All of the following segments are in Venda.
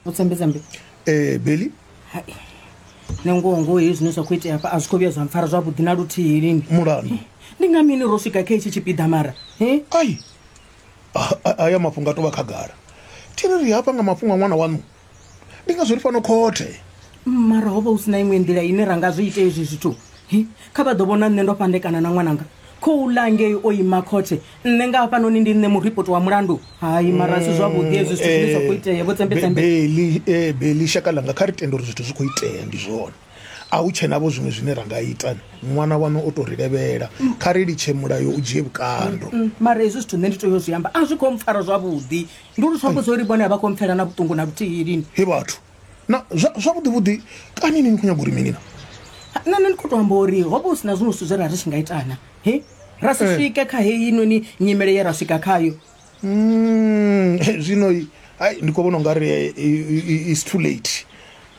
utsambe tsambe ee beli hai nangoho ngoho hei zwine zwa khou itea hafha a zwi khou vhuya zwa mpfara zwavhuḓi na luthihi lini mulandu ndi nga mini ro swika kha itshi tshipiḓa mara he ai A- a- aya mafhungo a tovha khagala thiri ri hafha nga mafhungo a ṅwana waṋu ndi ngazwo ri fano khothe mara ho vha hu si na iṅwe nḓila ine ra nga zwi ite ezwi zwithu kha vha ḓo vhona nṋe ndo fhandekana na ṅwananga khou ḽa ngei o ima khothe nṋe nga hafhanoni ndi nṋe muripoti wa mulandu hai mara si zwavhuḓi ezwi zwithu zwine zwa khou itea vho tsembetsembeeli eh, eh, shaka langa kha ri tende uri zwithu zwi khou itea ndi zwone a hu tshe navho zwiṅwe zwine ra nga ita ṅwana wanu o tou ri levhela kha ri litshe mulayo u dzhie vhukando mm, mm, mm. mara hezwi zwithu nṋe ndi tea u zwi amba a zwi khou mpfara zwavhuḓi ndi uri zwi ambudza uri vhone a vha khou mpfela na vhuṱungu na luthihi lini he vhathu na zwavhuḓi vhuḓi kani ni ni khou nyaga uri minina nṋe nṋe ndi khou to amba uri ho vha hu si na zwiṅwe zwithu zwe ra ri tshi nga itana he ra si eh. swike kha heyi noni nyimele ye ra swika khayo mm, zwino hai ndi khou vhona u nga ri eh, is too late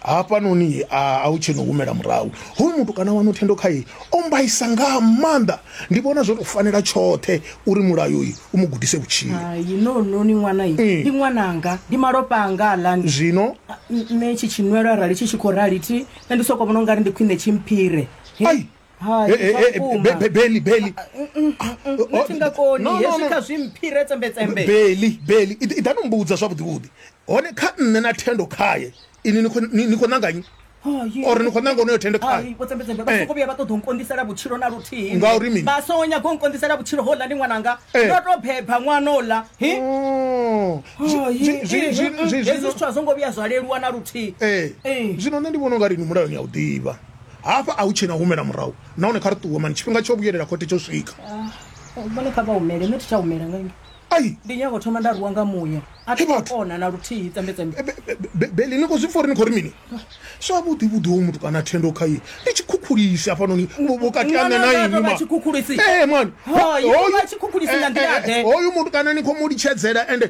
Hafhanoni a a u tshena u humela murahu. Hoyu mutukana waṋu thendo khae o mmbaisa nga maanḓa. Ndi vhona zwo tou fanela tshoṱhe uri mulayo uyu u mu gudise vhutshilo. Hai, no, no, ni ṅwana inwi. Ndi ṅwananga, ndi malofha anga aḽani. Zwino. Nṋe tshi tshinwelo arali tshi tshi khou rali thi, nṋe ndi sokou vhona u nga ri ndi khwine tshi mphire. He. Ai! Hai, Eh, eh, eh, vhukuma. Be- Be- Beli, Beli. Nṋe thi nga koni No, no, hezwi no. kha zwi mphire tsembetsembe Beli, Beli. I i ḓani umbudza zwavhuḓi vhuḓi. Hone kha nṋe na thendo khaye. Ini ni khou- ni ni khou ṋanga nnyi? Hai. Or ni khou ṋanga onoyo thendo khaye? Hai, vho tsembetsembe vha Eh. soko vhuya vha ṱoḓa u nkondisela vhutshilo na luthihi Ngauri mini? vha songo nyaga u nkondisela vhutshilo hola ndi ṅwananga Eh. ndo to beba ṅwana ola hi Oh. Hai, Zwi- zwi- eh, zwi- zwi- eh, zwi- hezwi zwithu a zwo ngo vhuya zwa leluwa na luthihi Eh. Eh. Zwino nṋe ndi vhona unga ri ni mulayoni ya u ḓivha. Hafha a hu tshena u humela murahu nahone kha ri ṱuwe mani tshifhinga tsho vhuyelela khothe tsho swika. Ah, vhone kha vha humele nṋe thi tsha humela nga ini. Ai ndi nyago thoma nda ruwa nga muya a thi kona na luthihi tsembetsembe. Beli ni khou zwi pfa uri ni khou ri mini? Zwavhuḓi vhuḓi hoyu muthu kana thendo kha ye ndi tshikhukhulisi hafhanoni vhukati ha nṋe na inwi ma. Tshikhukhulisi? Ee mani. Hoyu tshikhukhulisi nga nḓila ḓe. Hoyu muthu kana ni khou mu litshedzela ende